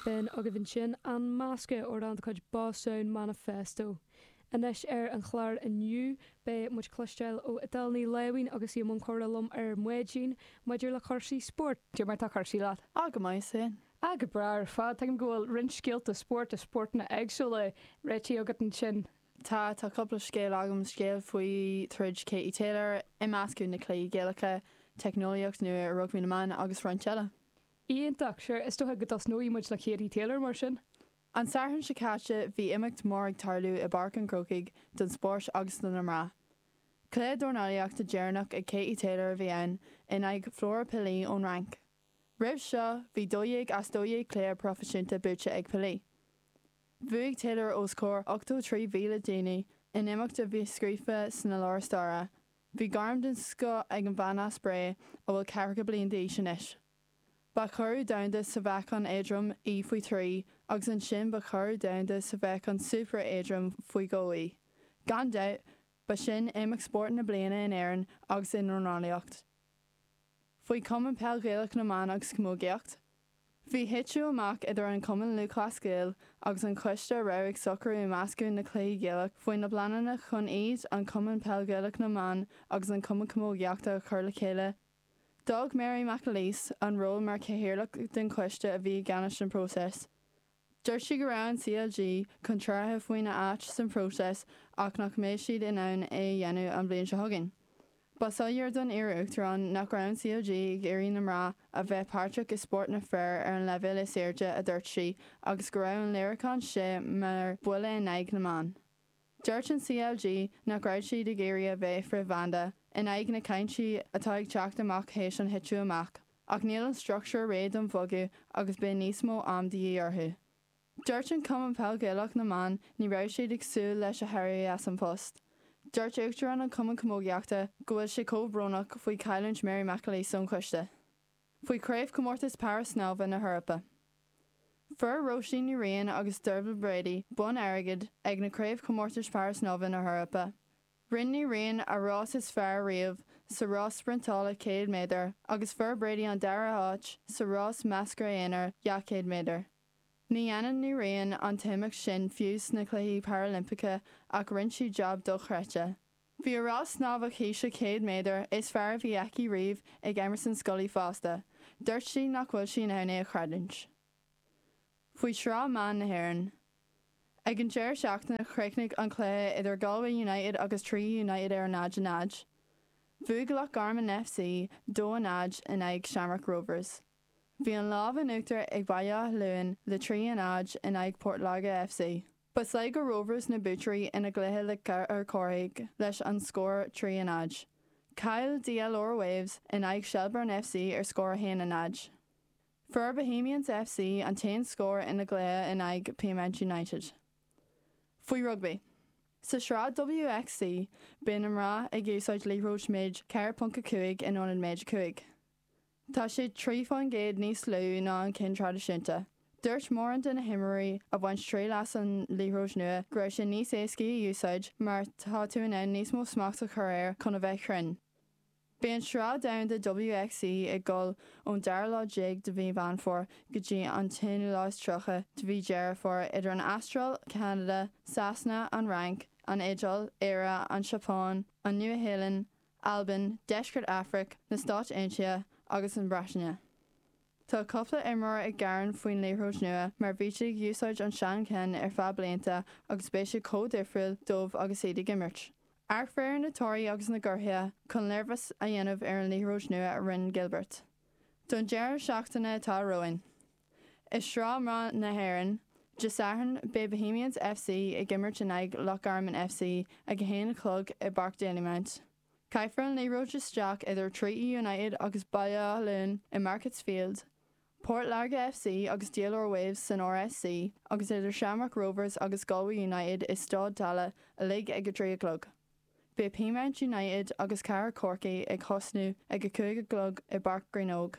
B'in agaibh ansin an meascadh amhrán de chuid Boss Sound Manifesto. Anois ar an chlár inniu beidh muid cloisteáil ó Edel Ní Láimhín agus í i mbun comhrá liom ar maidin maidir le cúrsaí spóirt. Cad é mar tá cúrsaí leat. Ah go maith sin. Ah go breá ar fad. Tuigim go bhfuil roinnt scéalta spóirt i spórtanna éagsúla réitithe agat ansin. Tá, tá cúpla scéal agam, scéal faoi throid Katie Taylor, imeascadh na cluichí Gaelacha, teicneolaíocht nua i rugbaí na mban agus roinnt eile. Iontach! Sure, is dócha go dtosnóidh muid le Katie Taylor mar sin! An Satharn seo caite bhí imeacht mór ag tarlú i bPáirc an Chrócaigh don spóirt agus do na mná. Cluiche dornálaíochta deireanach ag Katie Taylor a bhí ann in aghaidh Flora Pili ón Fhrainc. Roimh seo bhí 12 as 12 cluiche proifisiúnta buaite ag Pili. Bhuaigh Taylor os comhair 83,000 daoine in imeacht a bhí scríofa sna leabhair staire Bhí gairm den scoth ag an bhean as Bré a bhfuil ceathracha bliain d'aois anois. Ba churadh domhanda sa mheáchan éadrom í faoi thrí agus ansin ba churadh domhanda sa mheáchan super éadrom faoi dhó í. Gan dabht, ba sin Imeacht Spóirt na Bliana in Éirinn agus i ndornálaíocht. Faoi Chumann Peil Ghaelach na mBan agus Camógaíocht. Bhí titeadh amach idir an Cumann Lúthchleas Gael agus an choiste a raibh ag socrú imeascadh na cluichí Gaelach faoi na bpleananna chun iad, an Cumann Peil Gaelach na mBan agus an Cumann Camógaíochta, a chur le chéile. D'fhág Mary McAleese an ról mar chathaoirleach den choiste a bhí i gceannais an próiseas. Dúirt sí go raibh an CLG contrártha faoina áit san próiseas ach nach mbeidh siad in ann é a dhéanamh an bhliain seo chugainn. Ba shoiléir don iar-Uachtarán nach raibh an CLG ag iarraidh na mná a bheith páirteach i spórt na bhfear ar an leibhéal is airde a dúirt sí agus go raibh an léiriúchán seo mar buille in aghaidh na mban. Dúirt an CLG nach raibh siad ag iarraidh a bheith frithbhanda in aghaidh na cainte atá ag teacht amach théis an thiteadh amach ach níl an struchtúr réidh don bhogadh agus beidh níos mó am de dhíth orthu. Dúirt an Cumann Peil Gaelach na mBan ní raibh siad ag súil leis a héirí as an bpost. Dúirt Uachtarán an Chumann Camógaíochta go bhfuil sé chomh brónach faoi chailliúint Mary McAleese ón choiste. faoi Chraobhchomórtas Para-Snámha na hEorpa. Fuair Róisín Ní Riain agus Dearbhaile Brady bonn airgid ag na Craobhchomórtais Para-Snámha na hEorpa. Rinn Ní Riain a rás is fearr riamh sa rás spriontála 100 méadar agus fuair Brady an dara háit sa rás meascra aonair 200 méadar. Ní dhéanann Ní Riain an t-imeacht sin fiú sna Cluichí Parailimpeacha ach rinn sí jab dochreidte. Bhí a rás snámha cíche 100 méadar is fearr a bhí aici riamh ag Emerson Scully fosta, duirt sí nach bhfuil sí in ann é a chreidiúint. Faoi Sraith Mná na hÉireann. Ag an deireadh seachtaine chríochnaigh an cluiche idir Galway United agus Treaty United ar a náid a náid. Bhuaigh Loch Garman FC dó a náid in aghaidh Shamrock Rovers. Bhí an lámh in uachtar ag Baile Átha Luain le trí a náid in aghaidh Port Láirge FC. Ba Sligo Rovers na buaiteoirí ina gcluiche le Cathair Chorcaí leis an scór 3 a náid. Chaill DLR Waves in aghaidh Shelbourne FC ar scór 1 a náid. Fuair Bohemians FC an t-aon scór ina gcluiche in aghaidh Peamount United. Faoi rugbaí. Sa tsraith WXV, beidh na mná ag úsáid liathróid méid 4.5 in ionad méid 5. Tá sé trí faoin gcéad níos lú ná an ceann traidisiúnta. Dúirt mórán de na himreoirí a bhain triail as an liathróid nua go raibh sé níos éascaí a úsáid mar tá tú in ann níos mó smacht a chur air chun a bheith cruinn. Beidh an Sraith Domhanda WXV ag dul ón dara lá déag de mhí Mheán Fómhair go dtí an t-aonú lá is tríocha de mhí Dheireadh Fómhair idir an Astráil, Ceanada, Sasana, an Fhrainc, an Iodáil, Éire, an tSeapáin, an Nua-Shéalainn, Albain, Deisceart Afraic, na Stáit Aontaithe agus an Bhreataine. Tá cúpla imreoir ag gearán faoin liathróid nua mar bhí siad ag úsáid an seancheann ar feadh blianta agus beidh sé chomh difriúil dóibh agus iad ag imirt. Iarrfar ar na himreoirí agus na gcóitseálaithe chun léirmheas a dhéanamh ar an liathróid nua a rinne Gilbert don deireadh seachtaine atá romhainn. I Sraith Mná na hÉireann, Dé Sathairn, beidh Bohemians FC ag imirt in aghaidh Loch Garman FC ag a haon a chlog i bPáirc Dalymount. Caithfear an liathróid isteach idir Treaty United agus Baile Átha Luain i Markets Field, Port Láirge FC agus DLR Waves san RSC agus idir Shamrock Rovers agus Galway United i Staid Tallaght uilig ag a trí a chlog. Beidh Peamount United agus Cathair Chorcaí ag thosnú ag a cúig a chlog i bPáirc Greenogue.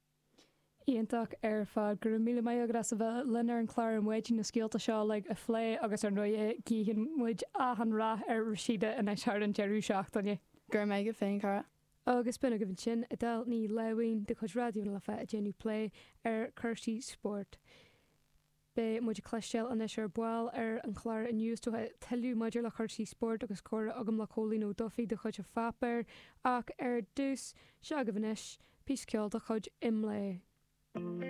Iontach ar fad. Go raibh míle maith agat as a bheith linn ar an chlár ar maidin, na scéalta seo uilig a phlé agus ar ndóigh guífidh muid achan rath ar Rhasidat anois thar an deireadh seachtaine. Go raibh maith agat féin, cara. Agus b'in agaibh ansin Edel Ní Leidhin de chuid Raidió na Life ag déanamh plé ar chúrsaí spóirt. Beidh muid ag cloisteáil anois ar ball ar an chlár inniu tuilleadh maidir le cúrsaí spóirt agus comhrá agam le Cóilín Ó Dubhthaigh de chuid an pháipéir ach ar dtús, seo agaibh anois píosa ceoil de chuid IMLÉ.